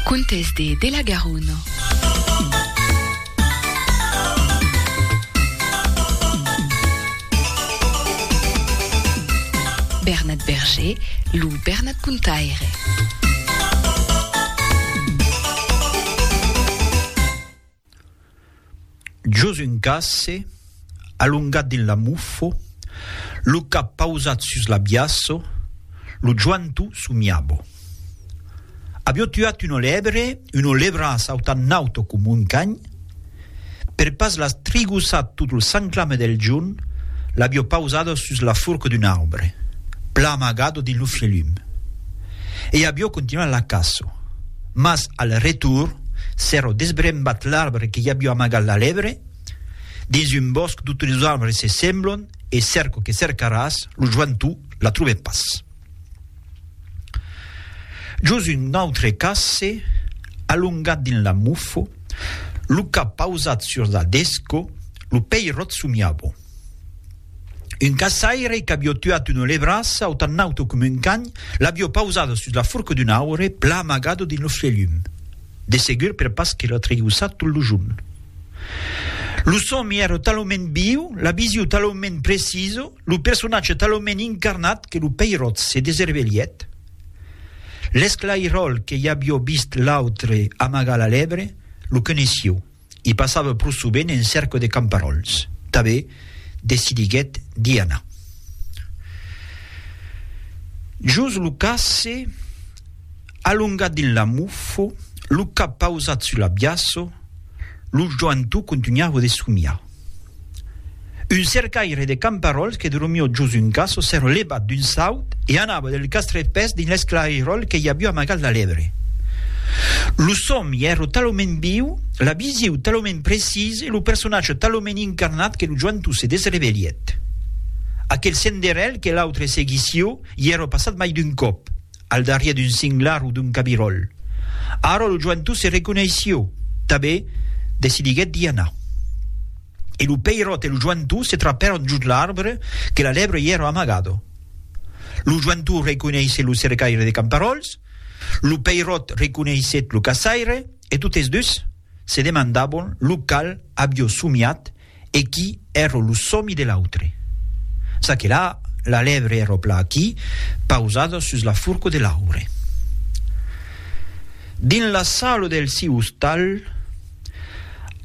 Contes de de la Garona. Bernat Berger, lo Bernat Contaire. Jos un casse, alongat dins la mufo, lo cap pausat sus l'abiaço, lo joantu somiabo. Avió tuat un olebre, un olebra sautant nauto com un canh, per pas las trigossat tot lo sanclame del jorn, l'avió pausado sus la forca d'un aubre, pla amagado dins lo fielum. e avió continuat la caça. Mas al retorn, s'èra desbrembat l'arbre que i avió amagat la lèbre. Dins un bòsc totes los arbres se semblon e cèrco que cèrcaràs, lo joantou la trobè pas. Jos un autre casse, alongat dins la mofo, lo cap pausat sus la desco, lo peiròt somiava. Un caçaire qu'avió tuat una lebrassa o tan nauta coma un can, l'avió pausada sus la forca d'un aure, plan amagada dins lo fielhum. De segur per pas que la tregussat tot lo jorn. Lo sòmi èra talament viu, la vision talament precisa, lo personatge talament incarnat que lo peiròt se deservelhèt. L'esclairòl que i avió vist l'autre amagar la lebre, lo coneissió. I passava pro sovent en cèrca de camparòls. Tanben, decidiguèt d'i anar. Jos lo casse, alongat dins l'amofo, lo cap pausat sus l'abiaço, lo joantou contunhava de somiar. Un cercaire de camparòls que dormió jos un caço s'èra levat d'un saut e anava del castret pès dins l'esclairòl que i avió amagat la lèbre. Lo sòmi èra talament viu, la visiu talament precisa e lo personatge talament incarnat que lo joentó se desrevelhèt. Aquel senderèl que l'autre seguissió i èra passat mai d'un còp. al darrier d'un singlar o d'un cabiròl. Ara lo joentot se reconeissió, tabé, decidiguèt d'i anar. E lo peiròt e lo joentot se trapèron jos l'arbre que la lèbre i èra amagada. Lo joentot reconeissé lo cercaire de camparòls, lo peiròt reconeissèt lo caçaire e totes dus se demandabon lo cal avió somiat E qui èrro lo somi de l'autre. Ça que là, la lèvre èrro pla aquí, pausada sus la furco de l'aure. Dins la salo del siu ostal,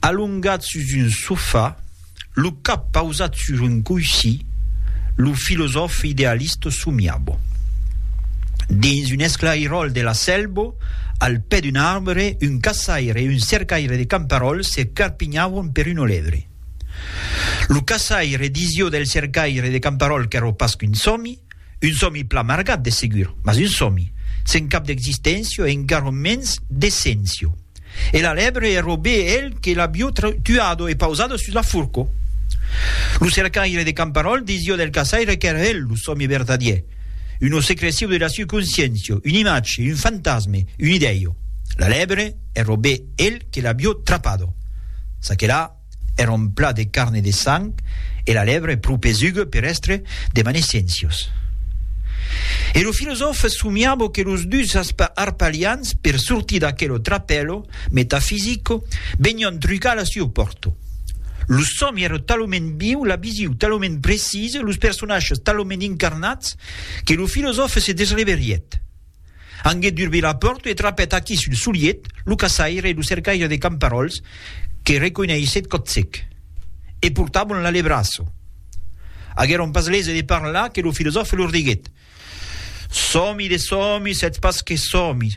alongat sus un sofà, lo cap pausat sus un coissí, lo filosòf idealist somiabo. Dins un esclairòl de la selbo, al pè d'un arbre, un caçaire e un cercaire de camparòls se carpinhavan per un olèvre. Lo caçaire disió del cercaire de camparòl qu'èro pas qu'un sòmi, Un sòmi plan margat, de segur, mas un sòmi, sen cap d'existéncia e encara mens d'esséncia. E la lèbre e robé el que l'avió tuado e pausado sus la furco. Lo cercaire de Camparòl disió del caçaire qu'èra el lo sòmi vertadier, una secrecion de la circonsciéncia, un imatge, un fantasme, un idèio. La lèbre e robé el que l'avió trapado. Çaquelà. Èra un plat de carne de sang e la lèvre pro pesuga per èstre de Manesiencios. E lo filosòfe somiava que los dus arpalians per sortir d'aquelo trapèlo metafisico venián trucar la sieu pòrta. Lo sòmi èra talament viu, la visiu talament precisa, los personatges talament incarnats que lo filosòfe se desreverièt. Anguet durbi la pòrta e trapèt aquí sul soliet lo caçaire e lo cercaire de camparòls que reconeishèt còtsec. E portavan la lebraço. Aguèron pas lese de parlar que lo filosòfe lor diguèt, Sòmi de sòmis, sètz pas que sòmis,